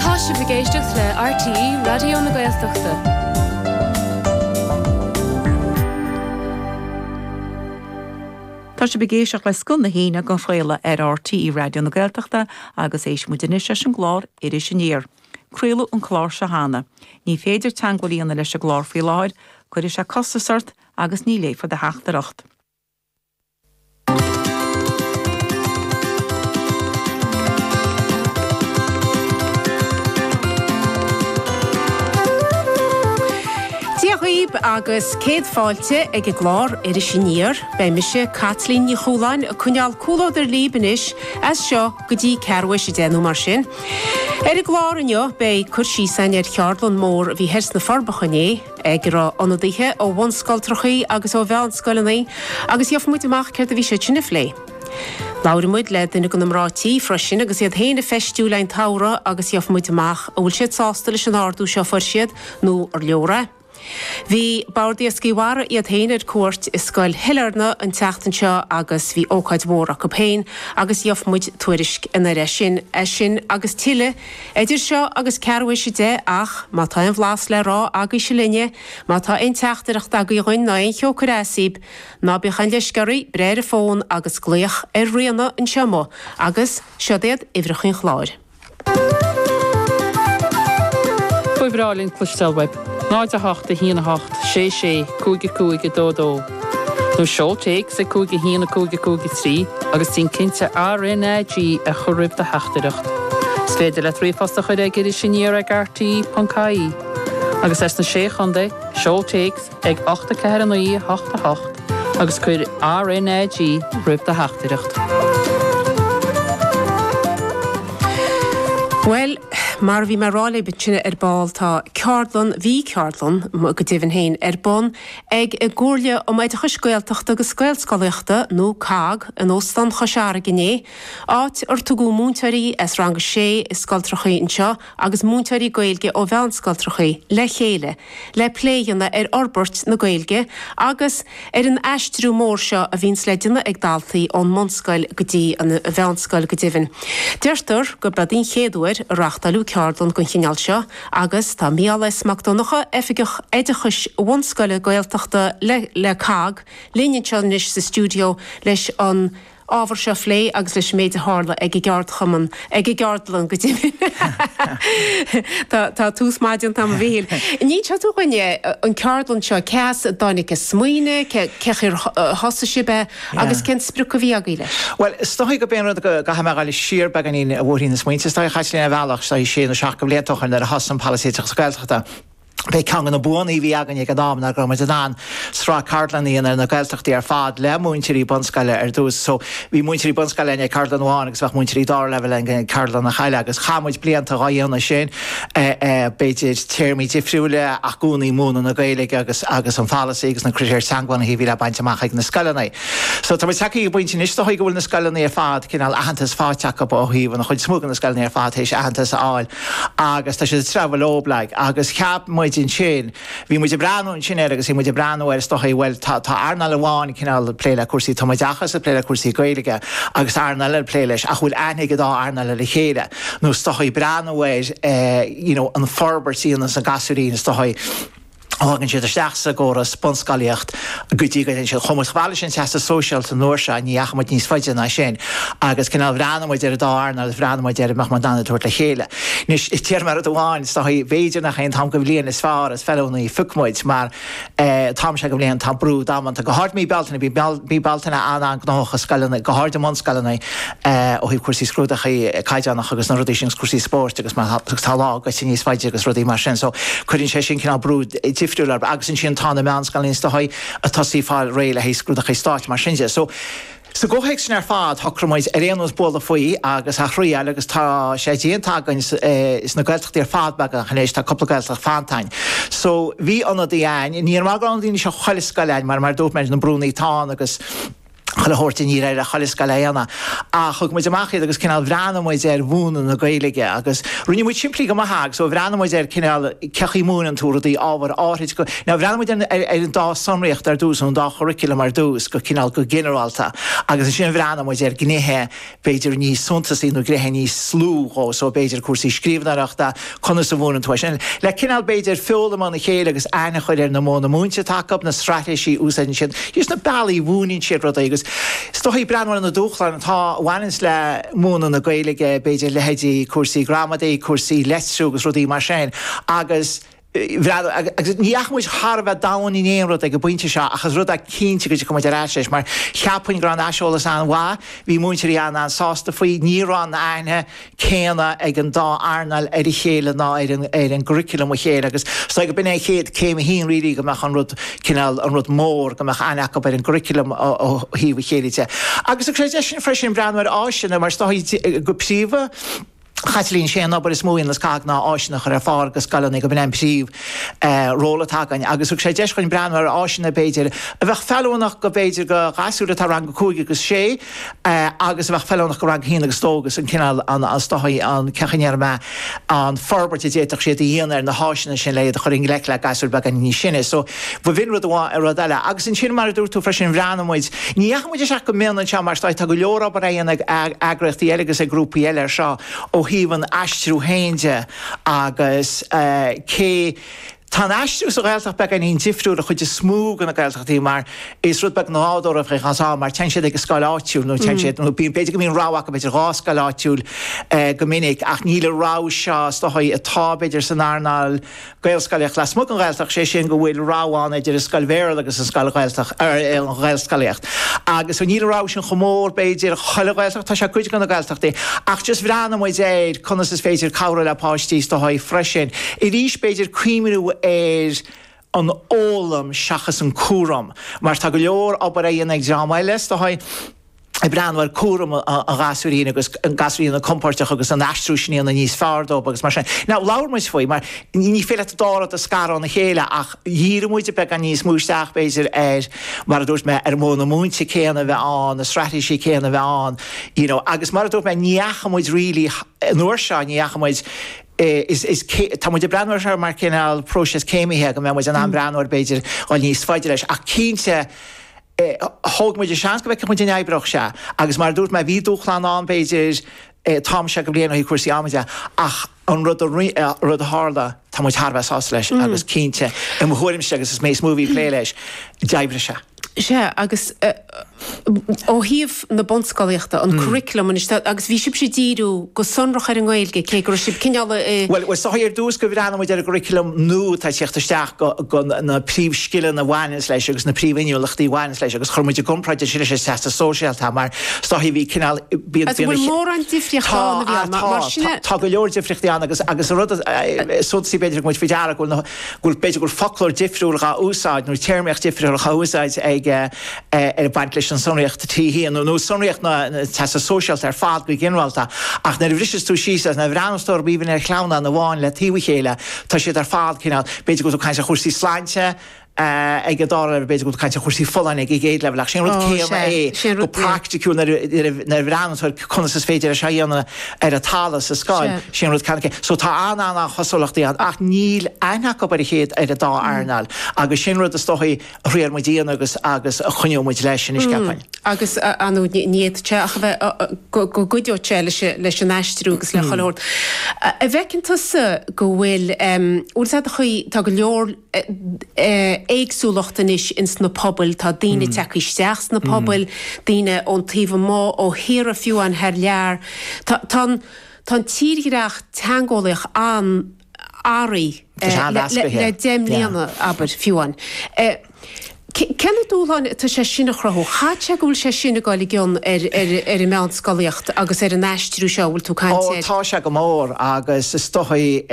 Tá sibh ag éisteacht le RTÉ Raidió na Gaeltachta. Tá sibh ag éisteacht le Scoth na hAoine dhá chraoladh ar RTÉ Raidió na Gaeltachta agus éistfidh muid anois leis an gclár Iris Aniar. Craoladh an clár seo cheana. Ní féidir teagmháil a dhéanamh leis an gclár faoi láthair, cuirfidh sé costas ort agus ní léifear do theachtaireacht. Dia dhaoib agus céad fáilte chuig an gclár Iris Aniar. Beidh mise, Caitlín Ní Chualáin, ag coinneáil comhluadar libh anois as seo go dtí ceathrú thar éis a 10 nó mar sin. Ar an gclár inniu beidh cur síos a'ainn ar cheardlann mór a bhí thoir sna Forbacha inné, ag a raibh ionadaithe ó bhunscoiltreachaí agus ó mheánscoileannaí, agus gheofa muid amach céard a bhí siad sin a phlé. Labhraidh muid le duine de na mná tí freisin agus iad féin ag feistiú le haghaidh an tsamhraidh agus gheofa muid amach an bhfuil siad sásta leis an ardú seo a fuair siad nó an leor é. Bhí Bord Iascaigh Mhara iad féin ar cuairt i scoil Sailearna an tseachtain seo agus bhí ócáid mhór acu féin agus gheofa muid tuairisc ina dhiaidh sin. É sin agus tuilleadh. Idir seo agus ceathrú thar éis a deich, ach má tá aon bhlas le rá agaibhse linne, má tá aon teachtaireacht agaibh dhuinn ná aon cheo ag cur as daoibh, ná bíodh aon leisce oraibh, breith ar an bhfón agus glaoch ar Ríona anseo amuigh agus siod iad uimhreacha an chláir. Ba bhreá linn cloisteáil uaibh. 08 1 8 6 6 5 5 2 2. nó seol téacs ag 5 1 5 5 3 agus déan cinnte RNAG a chur roimh do theachtaireacht. Is féidir leat ríomhphost a chur chuig Iris Aniar ag RTÉ.ie. Agus as na Sé Chontae, seol téacs ag 8 4 9 8 8 agus cuir RNAG roimh do theachtaireacht. Bhuel, mar a bhí mé a rá libh ansin ar ball, tá ceardlann, bhí ceardlann, go deimhin féin, ar bun ag an gComhairle um Oideachas Gaeltachta agus Gaelscolaíochta, nó cogg, in Óstán Chois Fharraige inné, áit ar tugadh múinteoirí as Rang 6 i scoiltreachaí anseo agus múinteoirí Gaeilge ó mheánscoiltreachaí le chéile le plé a dhéanamh ar fhorbairt na Gaeilge agus ar an aistriú mór seo a bhíonns le déanamh ag daltaí ón mbunscoil go dtí an mheánscoil. Go deimhin, deirtear gurb é an chéad uair a reáchtáileadh ceardlann den chineál seo, Agus tá Mícheál S. Mac Donnacha, Oifigeach Oideachais Bhunscoile Gaeltachta le cogg, linn anseo anois sa stiúideo leis an ábhar seo a phlé agus leis an méid a tharla ag an gceardchumann, ag an gceardlann go deimhin. Tá tús maith déanta agam a Mhíchíl. An inseodh tú dhúinn an ceardlann seo, cé as a dtáinig an smaoineadh, cén chaoi ar thosaigh sibh é? Agus cén sprioc a bhí agaibh leis? Bhuel, is dóichí gurb é an rud go gcaithfidh mé a dhul siar beagáinín a mhíniú na smaointe. Is dóichí, a Chaitlín, ar bhealach, is dóichí, sé nó seacht de bhlianta ó shoin nuair a thosaigh an Polasaí Oideachas Gaeltachta. B'é ceann de na buannaí a bhí againn ag an am ná go raibh muid in ann sraith ceardlannaí a dhéanamh ar na Gaeltachtaí ar fad le múinteoirí bunscoile ar dtús. So, bhí múinteoirí bunscoile againn ag ceardlann amháin agus bheadh múinteoirí dara leibhéal againn ag ceardlann eile agus chaith muid blianta dhá dhéanamh sin. ea, b'fhéidir, téamaí difriúla, ach i gcónaí múineadh na Gaeilge agus agus an polasaí agus na critéir teangabhunaithe a bhí le baint amach ag na scoileanna. So tá muid tagtha go pointe anois is dóichí go bhfuil na scoileanna ar fad, cineál aitheantas faighte acub ó thaobh an chuid is mó de na scoileanna ar fad tar éis aitheantas a fháil agus tá siad ag treabhadh leob leo. Agus cheap muid ansin. Bhí muid ag breathnú ansin air agus bhí muid ag breathnú air is dóichí, bhuel, tá earnáil amháin ag cineál plé le cúrsaí tumoideachas, ag plé le cúrsaí Gaeilge agus tá earnáil eile ag plé leis ach bhfuil aithne ag an dá earnáil ar a chéile nó is dóichí, breathnú ar you know an fhorbairt a bhíonns ag gasúirín is dóichí ó thagann siad isteach sa gcóras, bunscolaíocht. go dtí go dtéann siad chomh fada, bhuel, leis an Teastas Sóisearach an uair seo, ní dheachaigh muid níos faide ná sin, agus cineál bhreathnaigh muid ar an dá earnáil agus bhreathnaigh muid ar an mbeadh muid in ann iad a thabhairt le chéile. Anois, déarfaidh mé rud amháin, is dóichí, b'fhéidir nach é an t-am de bhliain is fearr is feiliúnaí phioc muid, mar an t-am seo de bhliain, tá brú damanta, go háirid mí Bealtaine, bíonn mí Bealtaine an-an-gnóthach i scoileanna, go háirid i mbunscoileanna, ó thaobh cúrsaí scrúdaithe caighdeánacha agus na rudaí sin, cúrsaí spóirt agus mar agus tá lá fáite níos faide agus rudaí mar sin. So cuireann sé sin cineál brú difriúil ann agus ansin tá na meánscoileanna is dóigh ag tosaí ag fáil réidh le haghaidh scrúdaithe stáit is mar sin de. So sa gcomhthéacs sin ar fad shocraigh muid ar aon nós bualadh faoi agus a thriáil agus tá sé déanta againn sna Gaeltachtaí ar fad beagnach anois, tá cúpla Gaeltacht fanta againn. So bhí ionadaí againn, ní raibh daoine as chuile scoil againn mar mar a dúirt mé na brúnna atá ann agus chuile a thabhairt níor éirigh le chuile scoil é a dhéanamh. Ach thug muid amach iad agus cineál bhreathnaigh muid ar mhúineadh na Gaeilge agus rinne muid simplí go maith é agus ó bhreathnaigh muid ar cineál cé chaoi múineann tú rudaí ábhair áithrid nó bhreathnaigh muid ar ar an dá sonraíocht ar dtús an dá churriculum ar dtús go cineál go ginearálta agus ansin bhreathnaigh muid ar gnéithe b'fhéidir níos suntasaí nó gnéithe níos lú dhó so, b'fhéidir, cúrsaí scríbhneoireachta, conas a mhúineann tú é sin? le cineál, b'fhéidir, foghlaim óna chéile agus aithne a chur ar na modhanna múinte atá acub, na straitéisí a úsáideann siad, na bealaí a mhúineann siad rudaí agus is dóichí breathnú ar na dúshláin atá a bhaineanns le múineadh na Gaeilge, b'fhéidir, leithéidí cúrsaí gramadaí, cúrsaí leitriú agus rudaí mar sin agus. agus ní dheachaigh muid thar a bheith domhain in aon rud ag an bpointe seo, ach is rud é cinnte go dtiocfaidh muid ar ais leis, mar cheapfainn go raibh an aiseolas an-mhaith, bhí múinteoirí an-an-sásta faoi, ní raibh an aithne chéanna ag an dá earnáil ar a chéile ná ar curriculum a chéile agus is dóichí go b'in é an chéad céim a haon really go mbeadh an rud cineál, an rud mór, go mbeadh aithne acub ar an gcurriculum ó thaobh a chéile de. Agus ar ais ansin freisin, breathnú ar áiseanna, mar is dóichí go príomha, Chaitlín, Sé an obair is mó le Gaeloideachas ná áiseanna a chur ar fáil go scoileanna gob é an príomh eh ról atá againn agus thug sé deis dhuinn breathnú ar áiseanna b'fhéidir a bheadh feiliúnach go b'fhéidir go gasúir atá i rang a cúig agus sé eh agus a bheadh feiliúnach go rang a haon agus dó agus an cineál an an stoitheadh an cén chaoi a ndéarfaidh mé an forbairt a d'fhéadfadh siad a dhéanamh ar na háiseanna sin le iad a chur i ngleic le gasúir beagáinín níos sine so B'in rud amháin é rud eile. Agus ansin, mar a dúirt tú freisin, bhreathnaigh muid, ní dheachaigh muid isteach go mion anseo mar tá go leor obair á dhéanamh ag eagraíochtaí eile agus ag grúpaí eile air seo ó thaobh an aistriú féin de agus cé Tá an aistriú sa Ghaeltacht beagáinín difriúil an chuid is mó de na Gaeltachtaí mar is rud beag nádúrtha a bheadh ann mar téann siad ag an scoil áitiúil nó téann siad nó bíonn b'fhéidir go mbíonn rogha acu idir dhá scoil áitiúil go minic ach níl an rogha seo is dóigh atá b'fhéidir san earnáil Gaelscolaíocht lasmuigh den Ghaeltacht, sé sin go bhfuil rogha ann idir an scoil Bhéarla agus an scoil Ghaeltacht, er, an Ghaelscolaíocht. Agus níl an rogha sin chomh mór, b'fhéidir, chuile Ghaeltacht, tá sé cuid de na Gaeltachtaí, ach just bhreathnaigh muid ar conas is féidir cabhrú le páistí sa treo sin freisin, arís, b'fhéidir cuimhniú ar an fhoghlaim seachas an cúram, mar tá go leor obair á dhéanamh ag dream eile sa treo. ag breathnú ar cúram an ghasúirín agus an gasúirín a bheith compóirteach agus an aistriú sin a dhéanamh níos fearr dóibh agus mar sin. Now, labhair muid faoi, mar ní féidir leat an dá rud a scaradh óna chéile ach dhírigh muid beagán níos mó isteach, b'fhéidir, ar, mar a dúirt mé, ar mhodhanna múinte céanna a bheith ann, na straitéisí céanna a bheith ann, you know. Agus mar a dúirt mé, ní fhaca muid really, an uair seo, ní fhaca muid, is, is, tá muid ag breathnú air seo mar cineál próiseas céimithe go mbeadh muid in ann breathnú air, b'fhéidir, dul níos faide leis ach cinnte, thóg muid an seans go bhfeicfeadh muid an oibreodh sé agus mar a dúirt mé bhí dúshláin ann b'fhéidir ó thaobh go háirid ó thaobh cúrsaí ama de ach an rud a roinn rud a tharla tá muid thar a bheith sásta leis agus cinnte i mo thuairimse agus is mé is mó a bhí plé leis d'oibrigh sé sé agus ó thaobh na bunscolaíochta, an curriculum anois, agus bhí sibhse ag díriú go sonrach ar an nGaeilge, cé go raibh sibh cineál. Bhuel, is dóigh ar dtús go bhreathnaigh muid ar an gcurriculum nua atá ag teacht isteach, go na príomhscileanna a bhaineanns leis agus na príomhinniúlachtaí a bhaineanns leis agus chuir muid i gcomparáid ansin leis an Teastas Sóisearach mar is dóigh bhí cineál, bíonn, Agus an bhfuil mórán difríochta ann, a bhí ann, mar sin, Tá, tá, tá go leor difríochtaí ann agus, agus an rud is suntasaí b'fhéidir a thug muid faoi deara go bhfuil na, go bhfuil, b'fhéidir go bhfuil foclóir difriúil dhá úsáid nó téarmaíocht difriúil dhá úsáid ag, ag baint leis an tsonraíocht tríú bliana, nó sonraíocht an teastas sóisearach ar fad go ginearálta, ach nuair a bhriseanns tú síos as an bhfearann stór b'aoibhinn ar chlann an amháin le taobh a chéile, tá siad ar fad cineál, b'fhéidir go bhfuil tú ag caint ar chúrsaí sláinte ag an dá leibhéal, b'fhéidir go bhfuil tú ag caint ar chúrsaí folláine ag an gcéad leibhéal, ach sé an rud céanna é go praiticiúil nuair a bhreathnaíonn tú ar conas is féidir é seo a dhéanamh ar an talamh sa scoil, sé an rud céanna é. So tá an-an-an-chosúlachtaí ann ach níl aithne acu ar a chéile, ar an dá earnáil agus sé an rud is dóichí, thriail muid é agus agus a choinneodh muid leis ina cheann. agus you know ní fhéadfadh sé ach a bheith go go gcuideodh sé leis leis an aistriú agus le chuile shórt. An bhfeiceann tusa go bhfuil bhfuil sa chaoi tá go leor éagsúlacht anois ins na pobail, tá daoine tagtha isteach sna pobail, daoine ón taobh amuigh, ó thíortha fiú amháin thar lear. Tá tá an tírdhreach teangeolaíochta. athraithe le deich mbliana, abair, fiú amháin. Cé na dúshláin atá sé sin a chruthú? Chaithfeadh sé go bhfuil sé sin ag dul i gcion ar an meánscolaíocht agus ar an aistriú seo a bhfuil tú ag caint air. Ó tá sé go mór agus is dóigh,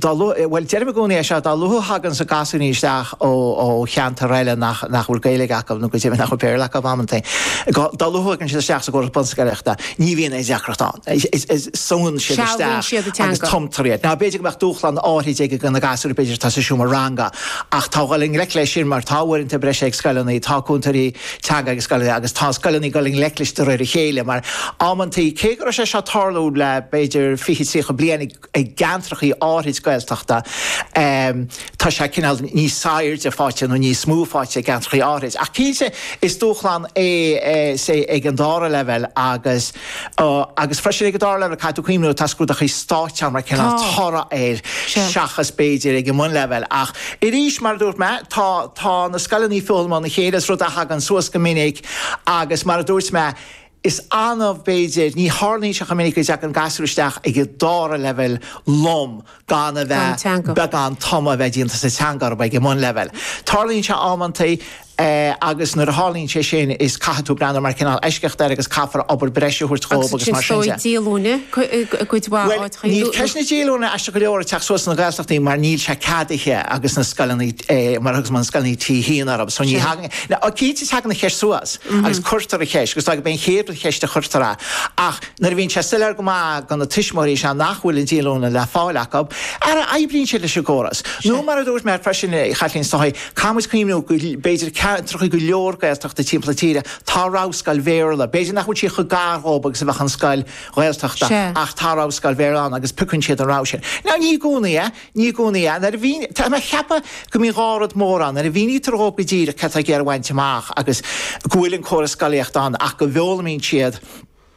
dá luaithe, bhuel, deirim i gcónaí é seo, dá luaithe a thagann na gasúinín isteach ó cheantar eile nach bhfuil Gaeilge acu nó go deimhin nach bhfuil Béarla acu amantaí, dá luaithe a thagann siad isteach sa gcóras bunscolaíochta, Ní bhíonn aon deacracht ann. Súnn siad isteach agus tumtar iad. Now, b'fhéidir go mbeadh dúshlán áithrid ag na gasúir, b'fhéidir atá sa seomra ranga, ach táthar ag dul i ngleic leis sin mar tá uaireanta breise ag scoileanna, tá cúntóirí teanga ag scoileanna agus tá scoileanna ag dul i ngleic leis de réir a chéile mar, amantaí, cé go raibh sé seo ag tarlú le, b'fhéidir, fiche, tríocha bliain, i gceantrachaí áithrid Gaeltachta, tá sé cineál níos sainfháite nó níos mó fáite i gceantrachaí áithrid. Ach cinnte is dúshlán é sé ag an dara leibhéal agus agus freisin ag an dara leibhéal, caithfidh tú cuimhniú, tá scrúdachaí stáit ann mar cineál toradh air seachas b'fhéidir ag an mbunleibhéal. Ach arís, mar a dúirt mé, tá tá na scoileannaí ag foghlaim óna chéile, is rud a thagann suas go minic agus mar a dúirt mé, Is annamh, b'fhéidir, ní tharlaíonn sé chomh minic, go dtagann gasúr isteach ag an dara leibhéal lom gan a bheith beagán tumadh a bheith déanta sa teanga acub ag an mbunleibhéal. Tarlaíonn sé amantaí agus nuair a tharlaíonn sé sin is caithfidh tú breathnú mar chineál eisceacht air agus caithfear obair bhreise a thabhairt dhóibh agus mar sin de. Agus sin í an díolúine i gcuid mhaith áiteacha. Bhuel, níl ceist na díolúine aisteach go leor ag teacht suas sna Gaeltachtaí mar níl sé ceadaithe agus na scoileanna, mar a thugas mé, na scoileanna atá aitheanta, so ní thagann Cinnte tagann an cheist suas agus cuirtear an cheist, agus go mb'fhéidir gurb é an chéad cheist a chuirtear í. Ach nuair a bhíonn sé soiléir go maith do na tuismitheoirí is ea nach bhfuil an díolúine le fáil acu, ó oibríonn siad leis an gcóras. Nó mar a dúirt mé freisin, a Chaitlín, is dóigh, caithfimid cuimhniú go mb'fhéidir ceantracha go leor Gaeltachta timpeall na tíre tá an rogha scoil Bhéarla, b'fhéidir nach bhfuil sí chomh gar dhóibh agus a bheadh an scoil Ghaeltachta, ach tá an rogha scoil Bhéarla ann agus piocann siad an rogha sin. Now ní i gcónaí é. Ní i gcónaí é, nuair a mhín, tá mé ag ceapadh go mbíonn dhá rud mór ann, nuair a mhínítear dhóibh go díreach céard atáthar ag iarraidh a bhaint amach agus go bhfuil an córas scolaíochta ann ach go bhfoghlaimíonn siad,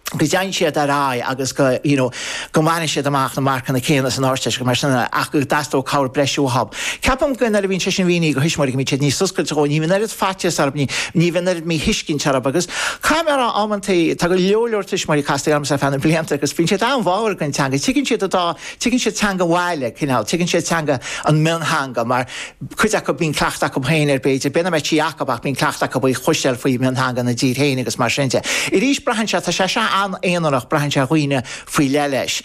go dtéann siad ar aghaidh agus go, you know, go mbaineann siad amach na marcanna céanna san Ardteist agus mar sin ach go dteastódh cabhair breise uathab. Ceapaim go nuair a bhíonn sé sin mínithe dho thuismitheoirí go mbíonn siad níos oscailte dhó, ní bhíonn oiread faitíos orthu, ní bhíonn oiread míthuiscint orthu agus caithfidh mé a rá amantaí tá go leor, leor tuismitheoirí casta ormsa ar feadh na mblianta agus bíonn siad an-bháúil don teanga, tuigeann siad an dá Tuigeann siad teanga mionlaigh, cineál, tuigeann siad teanga an mhiontheanga mar cuid acu, bíonn cleachtadh acu féin air b'fhéidir, b'fhéidir nach mbíonn Gaeilge acu ach bíonn cleachtadh acu ar chloisteáil faoi mhiontheanga ina dtír féin agus mar sin de. Arís, braitheann sé, tá sé seo an-aonarach, braitheann sé ar dhaoine faoi leith leis.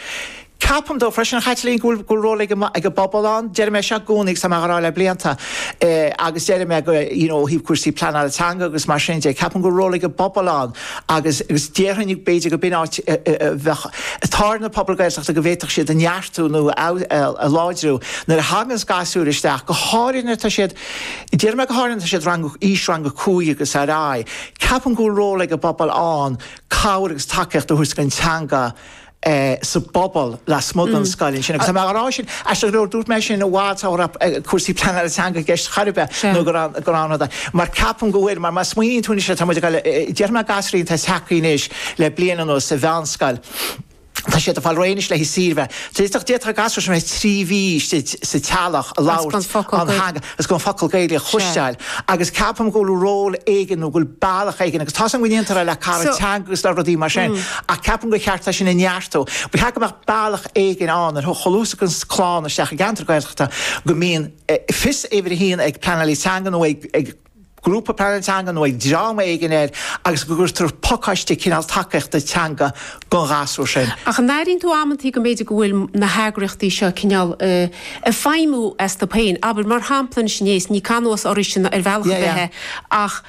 Ceapaim, is dóigh, freisin, a Chaitlín, go bhfuil ról ag an bpobal ann. Deir mé seo i gcónaí agus tá mé á rá le blianta agus déarfaidh mé go, you know, ó thaobh cúrsaí pleanála teanga agus mar sin de, ceapaim go bhfuil ról ag an bpobal ann. agus déarfainn b'fhéidir gur b'in áit a bheadh ar na pobail Gaeltachta go bhféadfadh siad é a neartú nó a láidriú nuair a thaganns gasúir isteach, go háirithe nuair atá siad, déarfaidh mé go háirithe nuair atá siad rang, aois rang a cúig agus ar aghaidh. Ceapaim go bhfuil ról ag an bpobal ann cabhair agus tacaíocht a thabhairt chun an teanga a sa bpobal lasmuigh den scoil ansin. Agus tá mé á rá sin, aisteach go leor, dúirt mé sin i bhfad sula raibh cúrsaí pleanála teanga i gceist chor ar bith nó gur ann dó, mar ceapaim go bhfuil, mar má smaoiníonn tú anois air, tá muid ag fáil, déarfaidh mé gasúir atá ag teacht anois le bliain anuas sa mheánscoil, tá siad ag fáil réidh anois le haghaidh saoire, bheadh, d'fhéadfadh an gasúr sin a bheith trí mhí istigh sa teaghlach gan labhairt an theanga. Is gan focal Gaeilge a chloisteáil agus ceapaim go bhfuil ról éigin nó go bhfuil bealach éigin agus tá's agam go ndéantar le cairde teanga agus le rudaí mar sin ach ceapaim gur cheart é sin a neartú. Ba cheart go mbeadh bealach éigin ann ar a luaithe is a thagann clann isteach i gceantar Gaeltachta go mbíonn fios uimhir a haon ag pleanálaí teanga nó ag grúpa pleanála teanga nó ag dream éigin air agus go gcuirtear pacáiste cineál tacaíochta teanga don ghasúr sin. Ach an airíonn tú amantaí go mb'fhéidir go bhfuil na heagraíochtaí seo cineál ag feidhmiú astu féin? Abair, mar shampla, anois inné is, ní cáineadh oraibhse ar bhealach ar bith é ach,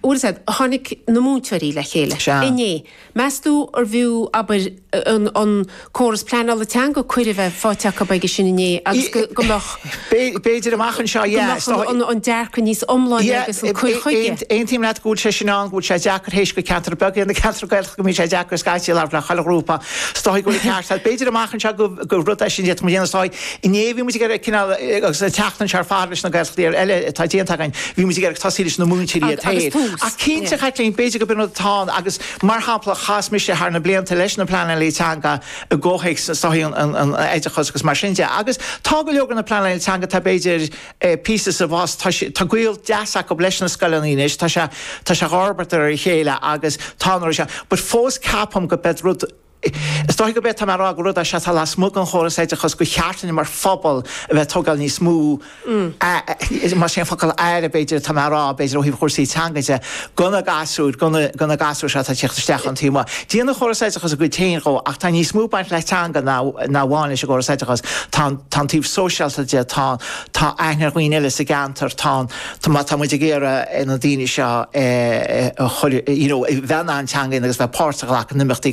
bhuel, is é, tháinig na múinteoirí le chéile inné, Meastú arbh fhiú, abair, an córas pleanála teanga cuireadh a bheith faighte acu aige sin inné agus go mbeadh. B'fhéidir amach anseo, yeah. Is dóigh. an dearcadh níos iomláine agus an cur chuige. Yeah, aontaím leat go bhfuil sé sin ann, go bhfuil sé deacair théis gur ceantar beag é na ceantair Ghaeltachta go mbíonn sé deacair scaití labhairt le chuile ghrúpa. Is dóigh go bhfuil an ceart agat. B'fhéidir amach anseo gur rud é sin a d'fhéadfadh muid a dhéanamh is dóigh. Inné bhí muid, cineál, agus an tseachtain seo ar fad leis na Gaeltachtaí eile atá déanta againn, bhí muid ag tosaí leis na múinteoirí ar dtús. Ach cinnte a Chaitlín, b'fhéidir gurb in rud atá ann agus mar shampla chas mise thar na blianta leis na pleanálaí teanga i gcomhthéacs seachas an t-oideachas agus mar sin de agus tá go leor de na pleanálaithe teanga tá b'fhéidir píosa sa bhfás tá sé tá gaol deas acu leis na scoileanna anois tá sé tá sé dhá fhorbairt ar a chéile agus tá an rud seo but fós ceapaim gurb é an rud Is dóigh gurb é atá mé a rá gur rud é seo atá lasmuigh den chóras oideachais gur cheart linn mar phobal a bheith ag tógáil níos mó aire, más é an focal aire b'fhéidir atá mé a rá, b'fhéidir ó thaobh chúrsaí teanga de, do na gasúir, do na gasúir seo atá ag tíocht isteach ón taobh amuigh. Déanann an córas oideachais a gcuid féin dhó ach tá níos mó ag baint le teanga ná amháin leis an gcóras oideachais. Tá an taobh sóisialta de, tá an, tá aithne ar dhaoine eile sa gceantar, tá an, má tá muid ag iarraidh na daoine seo a chur, you know, a bheith in ann an teanga agus a bheith páirt a ghlacadh in imeachtaí,